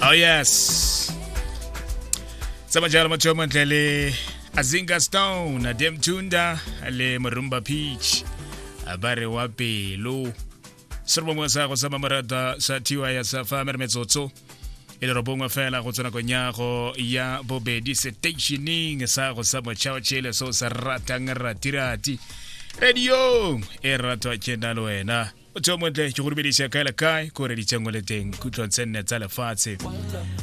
oh yes tsama jalo motho yo montle le azinga stone adem tunda le morumba peach ba re wa pelo se re bongwe sa go sama morata sa thiwa ya sa fa mere metsotso e le robongwe fela go tswa nakong ya go ya bobedi stationing sa go sa motšhao tšele se o se ratang ratirati radio e ratwa ke na le wena tseo montle ke go dumedisa kae le kae ko re ditsengo le teng kutlwang tse nne tsa lefatshe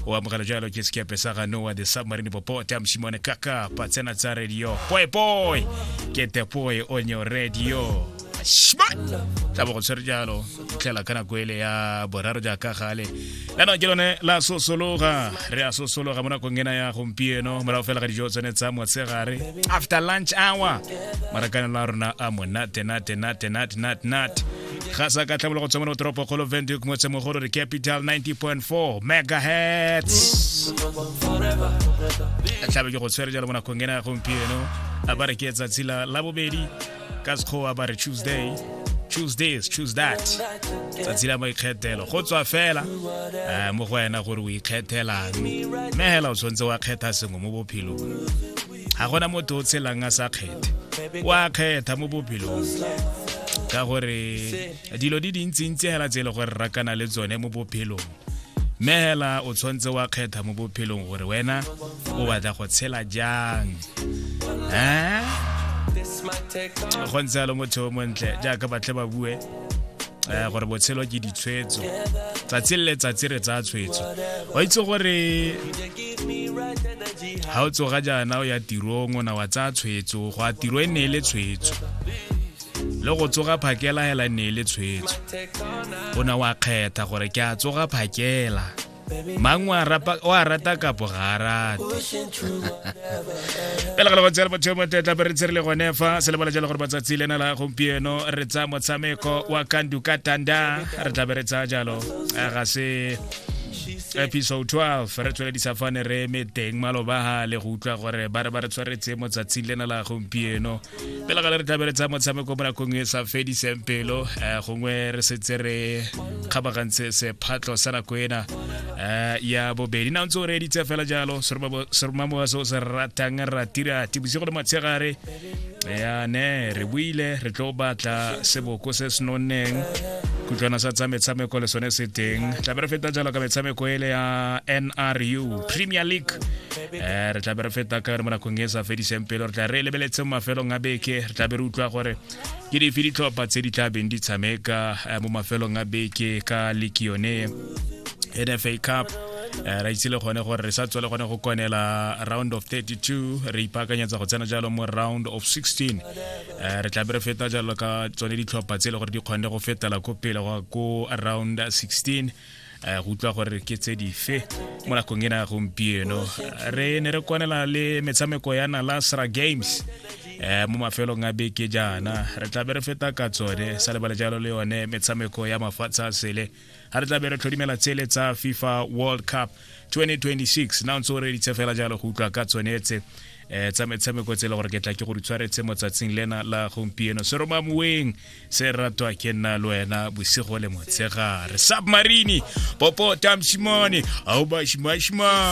o amogela jalo ke sekepe sa ga noa the submarine popota mosimone kaka patsena tsa radio poepoe ke tepoe onyo radio shma tla bo go tshwere jalo tlela ka nako ele ya boraro jaaka gale kana ke lone la sosologa re a sosologa mo nakong ena ya gompieno morago fela ga dijo tsone tsa motshegare after lunch hour marakanelo a rona a monate nate nate nate nate nate ga sa ka tlhabolo go tswa mo toropo kgolo venduke motsemogolo re capital 90.4 megahertz tlhabe ke go tshwere jalo mo nakong ena ya gompieno a ba re ke tsatsi la bobedi ka sekgowa ba re tuesday choose this choose that tsatsi la maikgethelo go tswa fela um mo go wena gore o ikgethelang mme hela o tshwanetse wa kgetha sengwe mo bophelong ga gona motho o tshelang a sa kgethe wa kgetha mo bophelong ka gore dilo di dintsintsi hela tse e le gore rakana le tsone mo bophelong mme hela o tshwanetse wa kgetha mo bophelong gore wena o batla go tshela jang eh? go ntse alo motho o montle jaaka batle ba bue eh, gore botshelo ke ditshwetso tsatsi le letsatsi re tsaya tshwetso o itse gore ga o tsoga jaana o ya tirong o na wa tsaya tshwetso go a tiro e ne e le tshwetso le go tsoga phakela hela ne le tshwetso o ne wa kgetha gore ke a tsoga phakela mang wa rata kapo ga a rate pele ga legotsela botho mo tetla be re tshire le gone fa se lebala jalo gore matsatsi le na la gompieno re tsaya motshameko wa kandu ka tanda re tla be re tsaya jalo ga se episode 12 re tsweledisa fane re eme teng malobagale go utlwa gore ba re ba re tshwaretse motsatsing lena la gompieno pela gale re tlabele tsa motshameko mo nakong e sa fediseng pelo eh, gongwe re setse re kgabagantse sephatlho sa nako ena eh, ya bobedi na ntse o reeditse fela jalo seromamowa se o se ratang ratirati bosigo le matshegare ya ne re buile re tlo batla seboko se se nonneng kutlwana sa tsa metshameko le sone se teng tlabe re feta jalo ka metshameko ele ya nru premier league um re tla be re feta ka re mo nakong e sa fediseng pelo re tla re lebeletse mo mafelong a beke re tla be re utlwa gore ke dife ditlhopha tse di tla beng di tshameka eh, mo mafelong a beke ka leki yone nfa cup Eh, ra itse le gone gore re sa tswa le gone go konela round of 32 re ipaakanyetsa go tsena jalo mo round of 16 eh, re tla be re feta jalo ka tsone ditlhopha tse e le gore di kgonne go fetela ko pele go ko round 16 eh, go utlwa gore ke tse dife mo nakong ena ya gompieno re ne re kwanela le metshameko ya nalasra games eh mo mafelong a beke jaana re tla be re feta ka tsone sa lebale jalo le yone metshameko ya mafatshe a sele ga re tla be re tlhodimela tsele tsa fifa world cup 2026 na ntse o reditse fela jalo go utlwa ka tsone tse eh tsa metshameko tse le gore ke tla ke go di tshwaretse mo tsatsing lena la gompieno seroma moeng se ratwa ke nna le wena bosigo le motshegare submarine popo tamshimone ao bashimashima